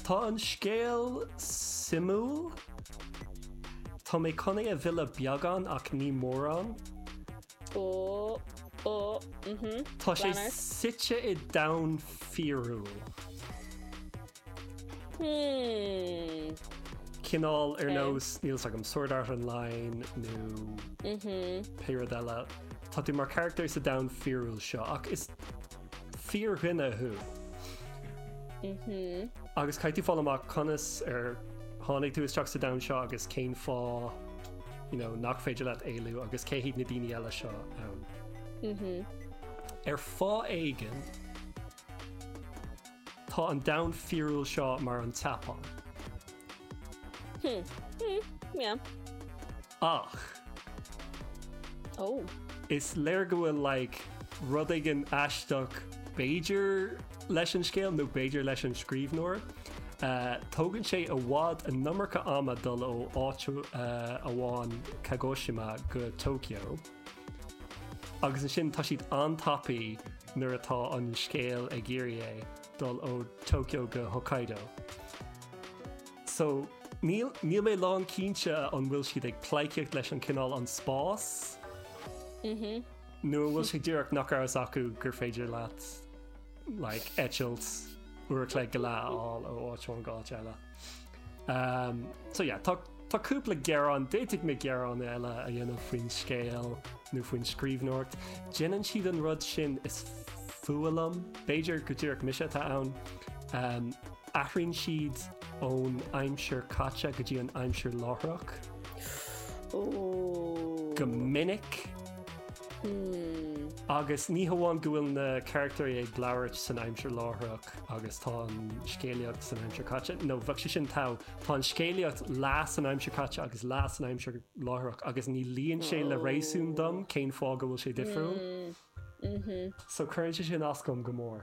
Tá an scéal suimiúil. Tá mé chun é a mhilleadh beagán ach ní mórán. Tá sé suite i domhan fíorúil. Cineál ar nós, níl 's agam, Sword Art Online nó pé rud eile. Tá tú mar charactar sa domhan fíorúil seo ach is. fíordhuine thú. Agus caithfidh tú fáil amach conas ar tháinig tú isteach sa domhan seo agus cén fáth nach féidir leat éalú agus cé hiad na daoine eile seo ann. Ar fháth éigin, tá an domhan fíorúil seo mar an tSeapáin. Ach. Ó! Is léir go bhfuil like rud éigin aisteach b'fhéidir leis an scéal nó b'fhéidir leis an scríbhneoir. Tógann sé i bhfad an iomarca ama dul ó áit amháin, Kagoshima, go Tokyo. Agus ansin tá siad an-tapaidh nuair atá an scéal ag iarraidh é dul ó Tokyo go Hokkaido. So, níl, níl mé lán cinnte an bhfuil siad ag pleidhcíocht leis an cineál an spás? Mhm. Nó an bhfuil sé díreach nach raibh a fhios acu gur féidir leat, like, eitilt uair a chloig go leath a fháil ó áit amháin go áit eile? Umm, so yeah, tá, tá cúpla gearán, d'fhéadfadh mé gearán eile a dhéanamh faoin scéal nó faoin scríbhneoireacht. Déanann siad an rud sin is fuath liom, b'fhéidir go díreach mise atá ann. Umm. Athraíonn siad ón aimsir chaite go dtí an aimsir láithreach go minic agus ní hamháin go bhfuil na carachtair ag labhairt san aimsir láithreach agus tá an scéalaíocht san aimsir chaite, nó bheadh sé sin togha. Tá an scéalaíocht leath san aimsir chaite agus leath san aimsir láithreach agus ní luíonn sé le réasún dom cén fáth go bhfuil sé difriúil so cuireann sé sin as dom go mór.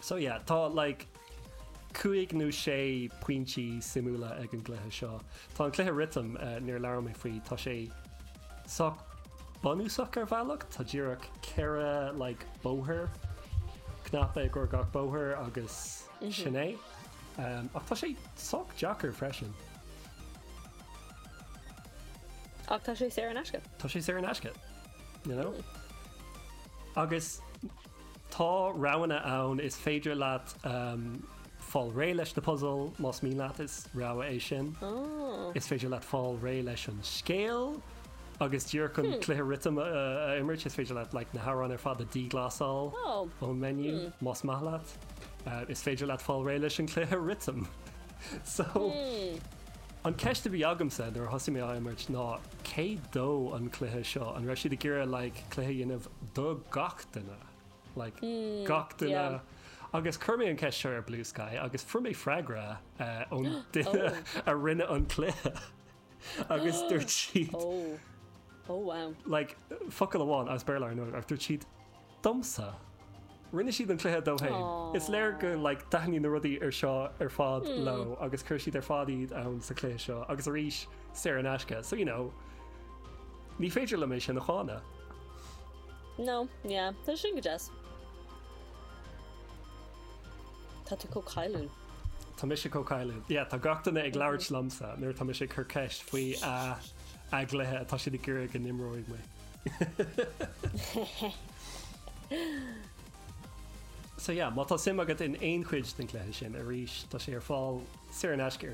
So yeah, tá like cúig nó sé pointí suimiúla ag an gcluiche seo. Tá an cluiche rithim, níor labhair mé faoi, tá sé sách bunúsach ar bhealach, tá díreach ceithre like bóthar, cnaipe i gcomhair gach bóthar agus sin é. Ach tá sé sách deacair freisin. Ach tá sé saor in aisce. Tá sé saor in aisce, you know? Agus. Tá roghanna ann, is féidir leat fáil réidh leis na puzail más mian leat, is rogha é sin. Is féidir leat fáil réidh leis an scéal agus díreach an cluiche rithim a imirt. Is féidir leat na hamhráin ar fad a dhíghlasáil ón menu, más maith leat. Is féidir leat fáil réidh leis an cluiche rithim. So. An ceist a bhí agamsa nuair a thosaigh mé á imirt ná cé dó an cluiche seo? An raibh siad ag iarraidh like cluiche a dhéanamh do gach duine? Like gach duine? yeah. Agus chuir mé an ceist seo ar Bluesky agus fuair mé freagra eh, ón duine a rinne an cluiche agus dúirt siad Oh. Oh wow. Like focal amháin as Béarla ar ndóigh ach dúirt siad domsa. Rinne siad an cluiche dó féin. Is léir go like thaitin na rudaí seo ar fad leo agus chuir siad ar fad iad ann sa chluiche seo agus arís saor in aisce so you know ní féidir liom é sin a cháineadh. No, yeah, tá sin go deas. Tá tú chomh cailliúil. Tá mise chomh cailliúil. Yeah, tá gach duine ag labhairt liomsa nuair atá mise ag cur ceist faoi a a gcluiche atá siad ag iarraidh go n-imreoidh muid. So yeah, má tá suim agat in aon chuid den cluiche sin, arís, tá sé ar fáil saor in aisce ar